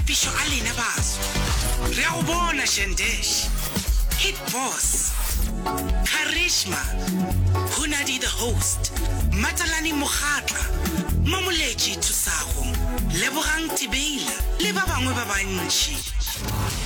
Pišo a lena baso. Re a go bona Shendesh. Hit Boss. Charisma. Hunadi the host. Matalani Mogatla. Mamoletši Thusago. Lebogang Tibeila le ba bangwe ba bantši.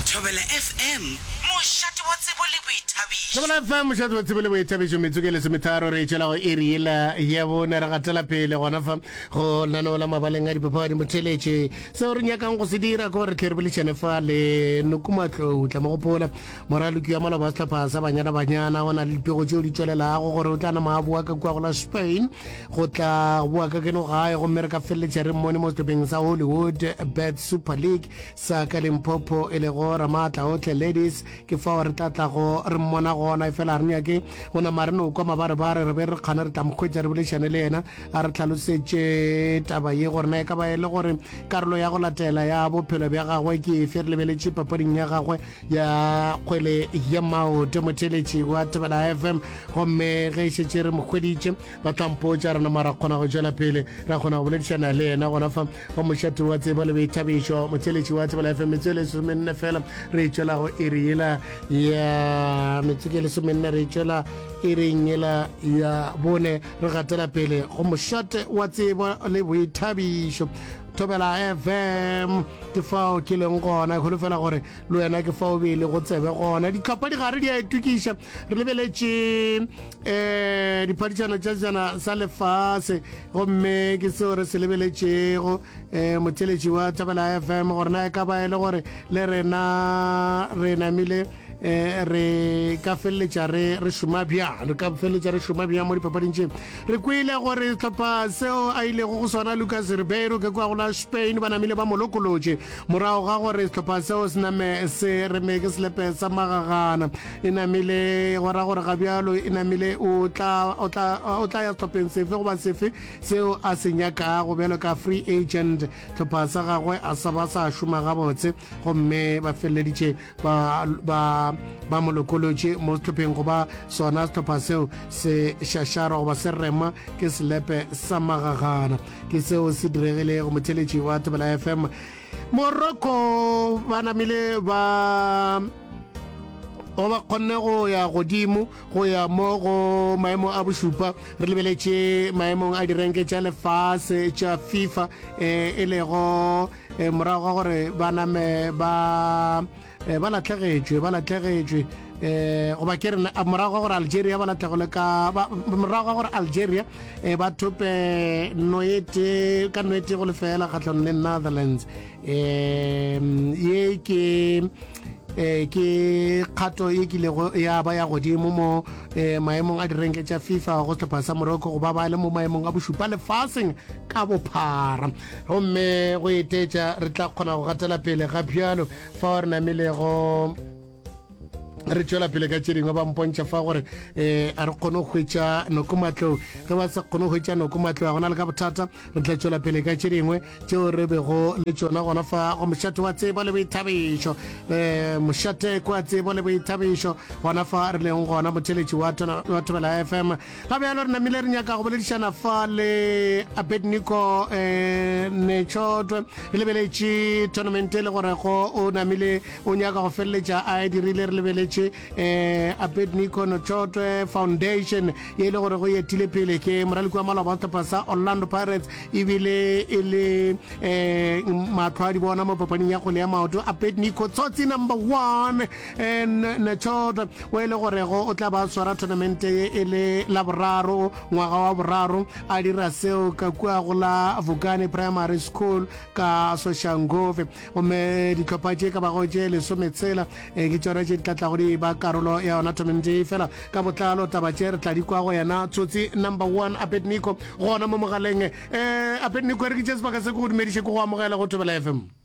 Thobela FM mošate wa tsebo le boithabišo. Thobela FM mošate wa tsebo le boithabišo metsotso ke lesometharo re etšela go iri yela ya bone re gatela pele gona fa go nanola mabaleng a dipapadi motheletše seo re nyakang go se dira ko re tle re bolešane fa le nokumatlou tla mo gopola moraloki wa maloba sehlopha sa banyana banyana o na le dipego tseo di tswelelago gore o tla nama a boa ka kua go la spain go tla boa ka keno gae gomme re ka feleletša re mmone mo sehlopeng sa hollywood bad super league sa ka limpopo e lego ramaatla otlhe ladies ke fao re tla tlago re mmona gona e fela re nyake go nama re no kwa mabarebare re be re kgane re tla mokgwetsa re bolešane le yena a re tlhalosetše taba ye gore na e ka ba e le gore karolo ya go latela ya bophelo bja gagwe ke efe re lebeletše papading ya gagwe ya kgwele ya maoto motheletši wa tebela fm gomme ge e šetše re mo kgweditše ba tlampotša rena mara kgona go tšwela pele ra kgona go boledišana le yena gona fa wa mošato wa tsebo le boithabišo motheletši wa tebela fm metsotso e lesomenne fela re e tšwelago e re yela ya metsotso e lesomenne re e tšwela e reng yela ya bone Re gatela pele go mošate wa tsebo le boithabišo thobela fm ke fao ke leng gona go lefela gore le wena ke fao bele go tsebe gona ditlhopha di gare di a itukiša re lebeletše um eh, diphadišano tša jana sa lefase gomme ke seo re se lebeletšego um motheletši wa thobela fm gore na e ka ba e le gore le rena re namile eh re ka feleletša re re šoma bjang re ka feleletša re šoma bjang mo dipapading tše re kwele gore tlhopha seo a ilego go sona lucas ribeiro ke kwa gona spain ba namile ba molokolotše morago ga gore setlhopha seo se name se reme ke selepe sa magagana e namile go ra gore ga bjalo e namile o tla o tla o tla ya setlhopheng sefe goba sefe seo a se nyakago bjalo ka free agent tlhopha sa gagwe a sa ba sa šoma gabotse gomme ba feleleditše ba ba ba mo lokolotše mo sehlopheng goba sona sehlopha seo se šašara goba se rema ke selepe sa magagana ke seo se diregile go motheletši wa tebela fm morocco ba namile ba go ba kgonne go ya godimo go ya mo go maemo a bošupa re lebeletše maemong a direnke tša lefase tša fifa um e lego e morago ga gore ba name ba e, ba latlhegetšwe ba latlhegetšwe um goba ke rena morago ga gore algeria ba latlhegole ka morago ga gore algeria um ba thope noete ka noete go lefela kgatlhanong le netherlands um ye ke eh ke kgato e kilego ya ba ya godimo mo eh maemong a direnke tša FIFA go sehlopha sa Morocco go ba ba le mo maemong a bošupa lefaseng ka bophara Gomme go etetša, re tla kgona go gatela pele ga bjalo fao re namilego re tšwela pele ka tše dingwe ba mpontšha fa gore um a re kgone go hwetša noko matlong ge ba sa kgone go hwetša noko matlong a gona le ka bothata re tla tšwela pele ka tše dingwe tšeo re bego le tšona gona fa go mošate wa tsebo le boithabišo um eh, mošateko wa tsebo le boithabišo gona fa re leng gona motheletši wa thobela f m Ga bjalo re namile re nyaka go boledišana fa le Abednico eh, Nechotwe re lebeletše tournament e le gore go o namile o nyaka go feleletša a e dirile re lebeletše eh, Abednico Nechotwe Foundation e le gore go etile pele ke moraliki wa maloba sehlopha sa Orlando Pirates ebile e le eh, matlho a di bona mo papaning ya kgole ya maoto Abednico tsotsi number one Netsholt, o e le gorego o tla ba swara thonamente ye e le la boraro ngwaga wa boraro a dira seo ka kua go la Vukani Primary School ka Soshanguve. Gomme dihlopha tše ka bago tše lesometshela eh, ke tšona tše di tla tlago di ba karolo ya yona thonamente ye fela ka botlalo taba tše re tla di kwa go yena tsotsi number one Abednico gona mo mogaleng. Eh, Abednico re ke tše sebaka se ke go dumediše ke go amogela go Thobela FM.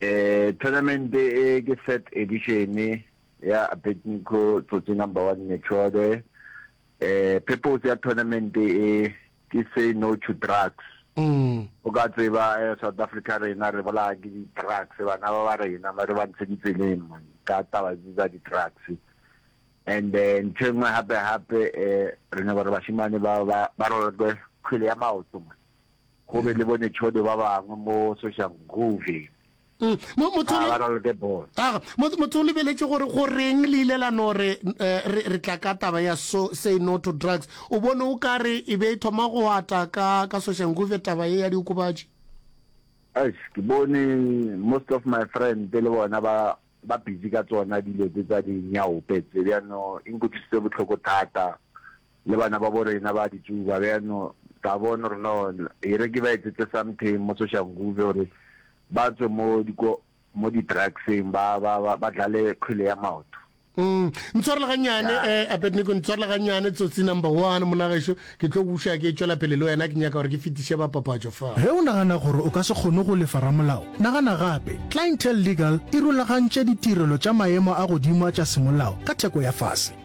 Thonamente e ke third edition ya Abednico Tsotsi Number One Mechode. Purpose ya thonamente e ke say no to drugs. O ka tseba South Africa rena re bolaya ke di drugs, bana ba ba rena ba re ba ntshe ditseleng man ka taba tse tsa di drugs. And ntho e nngwe hape hape re nyaka hore bashemane ba ba ba raloke kgwele ya maoto man. go be le bonetšhode ba bangwe mo Soshanguve. Mo, motho Ah, o le- ba na le the ball. Aga, mo- motho o lebeletše gore go reng le ile la no re eh, re re tla ka taba ya so say no to drugs o bone o ka re e be e thoma go ata ka ka soshanguve taba ye ya diokobatši Eish, ke bone most of my friend le bona ba ba busy ka tsona dilo tse tsa dinyaope tse bjano e nkutlwisitse bohloko thata Le bana babo rena ba ditšuba beno ka bono rena one e re ke ba etsetse something mo Soshanguve gore ba tswe mo diko mo di drugseng ba ba ba ba dlale kgwele ya maoto. Mm. Ntshwarele ganyane eh, Abednego, ntshwarele ganyane tsotsi number one monageso, ke tlo buša ke tšwela pele le wena, ke nyaka gore ke fetiše bapapatšo fa. Ge o nagana gore o ka se kgone go lefa ramolao, nagana gape. Clientele Legal e rulagantše ditirelo tša maemo a godimo a tša semolao ka theko ya fase.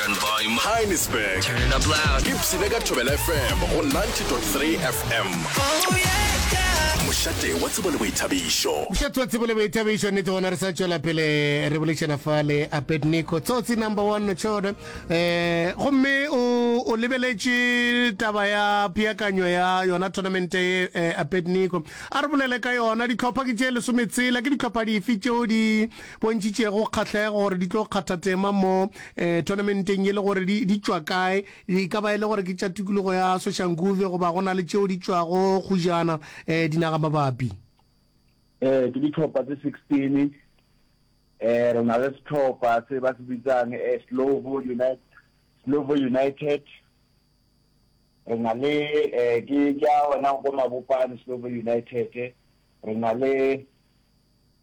Turn the volume up. Heinisberg. Turn it up loud. Ke psine ka Thobela FM go 90.3 FM. Oh yeah, yeah. Mošate wa tsebo le boithabišo. Mošate wa tsebo le boithabišo nnete gona re sa tšwela pele re bolešana fa le Abednico tsotsi number 1 no tšhone. Eh gomme o o lebeletše taba ya peakanyo ya yona tournament e eh, Abednico. A re bolele ka yona ditlhopha ke tše lesome tsela ke ditlhopha dife tšeo di bontšitšego kgahlego gore di tlo kgatha tema mo um tournamenteng ye le gore di di tšwa kae, e ka ba e le gore ke tša tikologo ya Soshanguve goba go na le tšeo di tšwago kgujana um dinagamabapi. Um ke ditlhopha tse sixteen, um re na le setlhopha se ba se bitsang um Slovo United, Slovo United, re na le um ke ke a ona ko Mabopane Slovo United, re na le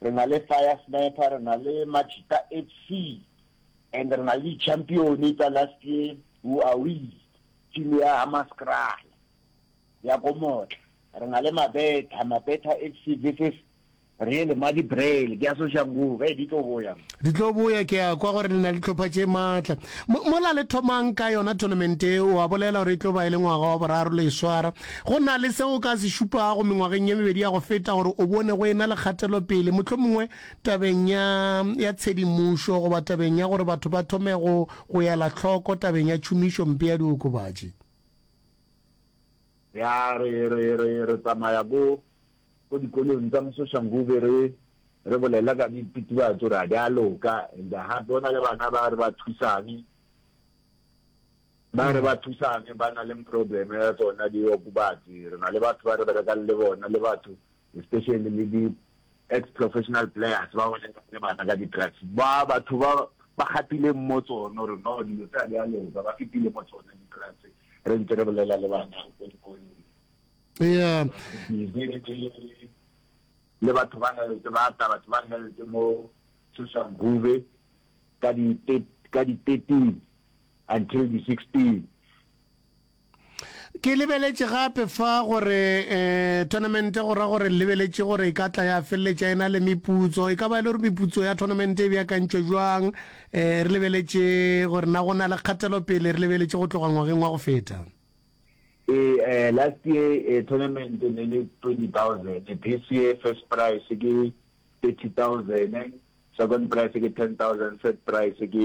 Re na le Fire Sniper, re na le Machita FC and re na le di-champion tsa last year, Who Are We, team ya Hammanskraal ya ko Motla. Re na le Mabetha, Mabetha FC versus Real Madi Braille, ke ya Soshanguve. Hey, di tlo boya. Di tlo boya, ke a kwa gore le na le tlhopha tše matla. Mo, mola le thomang ka yona tournament e, o a bolela gore e tlo ba e le ngwaga wa boraro le e swara. Go na le seo o ka se šupago mengwageng ye mebedi ya go feta gore o bone go e-na le kgatelopele, mohlomongwe tabeng ya, ya tshedimošo goba tabeng ya gore batho ba thome go, go ela hloko tabeng ya tšhomišompe ya diokobatši? Ya, re, re, re, re tsamaya ko, ko dikolong tsa Mososhanguve re, re bolela ka dititibatšo, re a di a loka, and gape go na le bana ba re ba thusang. Ba re ba thusane ba na le problem ya tsona di okobatsi re na le batho ba re berekang le bona le batho especially le di ex professional players ba bone le bana ka di drugs ba batho ba ba gatile mo tsono re no dilo tsa di a loka ba fitile mo tsone di drugs re ntse re bolela le bana go go yeah le batho ba health ba ta batho ba health mo social group ka di ka di 13 until di 16. Ke lebeletše gape fa gore eh, tournament go ra gore lebeletše gore e ka tla ya feleletša e na le meputso e ka ba e le gore meputso ya tournament e beakantšwe jwang eh, re lebeletše gore na go na le kgatelopele re lebeletše go tloga ngwageng wa go feta e eh, last year eh, tournament ne le 20000 this year first price ke 30000 second price ke 10000 third price ke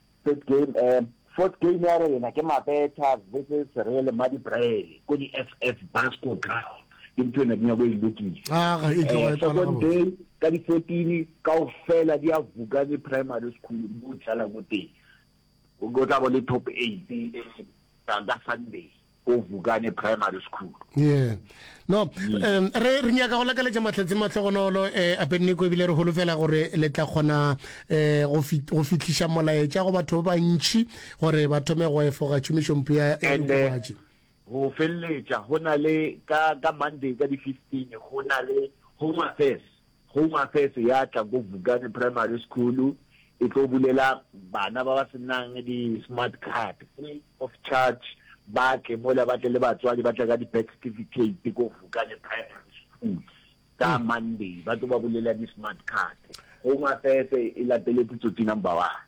Third game eh Fourth game ya rena ke Mabetha vs Real Madibrele ko di FF Basco Ground ke ntho ena dinako e lokile ah, eh, second day ka di 14 kaofela di a Vukani Primary School mo dlala ko teng o tla bo le top 8 ka Sunday ko Vukane Primary School. Yeah. No, um, re, re nyaka go lakaletša mahlatse mahlogonolo eh, apeneko ebile re holofela gore le tla kgona eh, go, fit, go fihliša molaetša go batho ba bantši gore ba thome go efoga tšhomišompe ya diokobatši go feleletša go na le ka, ka monday ka di-fifteen go na le home affairs Home Affairs ya tla ko Vukane Primary School e tlo bulela bana ba ba se nang di smart card free of charge ba tle mola ba tle le batswadi ba tle ka di birth certificate ko Vukane Primary School ka Monday ba tlo ba bulela di smart card. Home Affairs e lateletse tsotsi number one.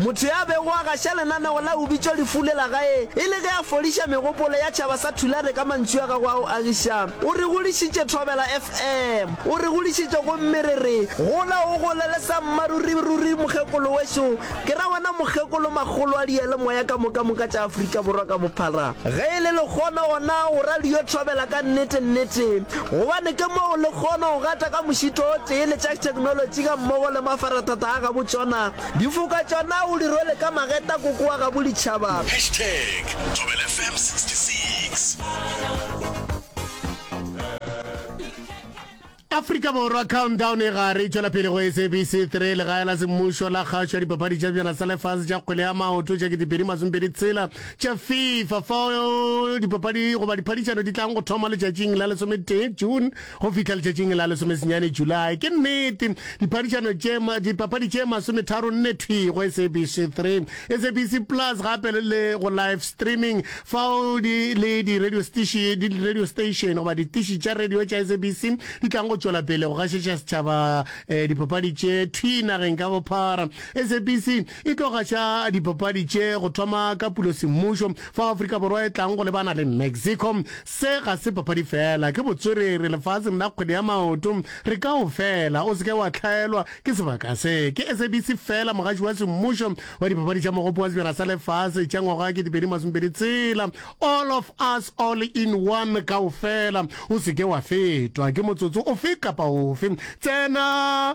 Motho yo a bego a gaša lenaneo la Ubitšwa Lefu le la Gae e le ge a fodiša megopolo ya tšhaba sa Tulare ka mantšu a gagwe a go agiša, o re godišitše Thobela FM. O re godišitše gomme re re, Gola o gole le sammaruri ruri mokgekolo wešo, ke ra wena mokgekolo makgolo a diyalemoya ka moka moka tša Afrika Borwa ka bophara. Ge e le lekgono gona go radio Thobela ka nnete nnete gobane ke moo le kgono go gata ka mošito o tee le tša theknolotši ga mmogo le mafarathata a gabotšona Difoka tša na o di rwele ka mageta koko wa gabo ditšhaba. Hashtag Thobela FM 66. Afrika Borwa Countdown e gare e tšwela pele go SABC 3 legae la semmušo la kgašo ya dipapadi tša bjana sa lefase tša kgwele ya maoto tša ketepedi masomepedi tshela tša FIFA fao dipapadi goba diphadišano di tlang go thoma letšatšing la lesometee June Go fihla letšatšing la lesomesenyane Julae, ke nnete, diphadišano tše, dipapadi tše masometharo nne thwi go SABC 3, SABC Plus gape le go live streaming, fao di, le di radio stiši, di radio station goba ditiši tša radio tša SABC di tlago go tšwela pele go gašetša setšhaba eh, dipapadi tše thwi nageng ka bophara. SABC e tlo gaša dipapadi tše go thoma ka pulosemmušo fao Afrika Borwa e tlang go lebana le Mexico. Se ga se papadi feela, ke botswerere lefaseng la kgwele ya maoto. Re kaofela, o se ke wa hlaelwa ke sebaka se. Ke SABC feela mogaši wa semmušo wa dipapadi tša Mogopo wa Sejana sa Lefase tša ngwaga wa 2020 tsela. All of us, all in one, kaofela. O se ke wa fetwa ke motsotso ofe kapa ofe. Tsena!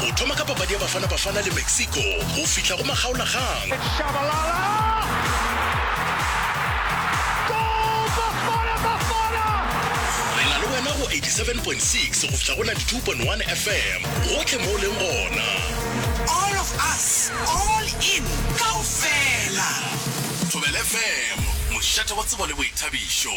go thoma ka papadi ya Bafana Bafana le Mexico go fihla go makgaolagang. It's Shabalala! Goal, Bafana Bafana! Re na le wena go 87.6 go fihla go 92.1 FM gotlhe mo o leng gona. All of us, all in, kaofela! Thobela FM, mošate wa tsebo le boithabišo.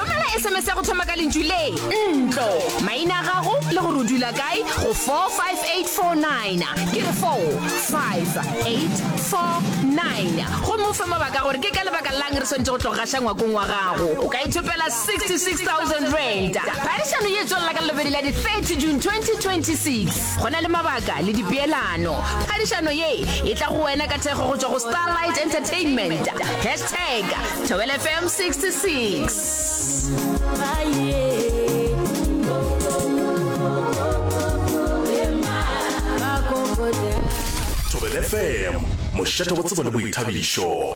romela sms ya go thoma ka lentšu le ntlo maina a gago le gore o dula kae go 45849 ke re 45849 gomme o fe mabaka gore ke ka lebaka lang re swanetse go tlogaša ngwakong wa gago o ka ithopela 66000 rand phadišano ye tswelela ka lobedi la di-30 june 2026 go na le mabaka le dipeelano phadišano ye e tla go wena ka thekgo go tswa go starlight entertainment Tag, Thobela FM 66. Thobela FM, mošate wa tsebo le boithabišo.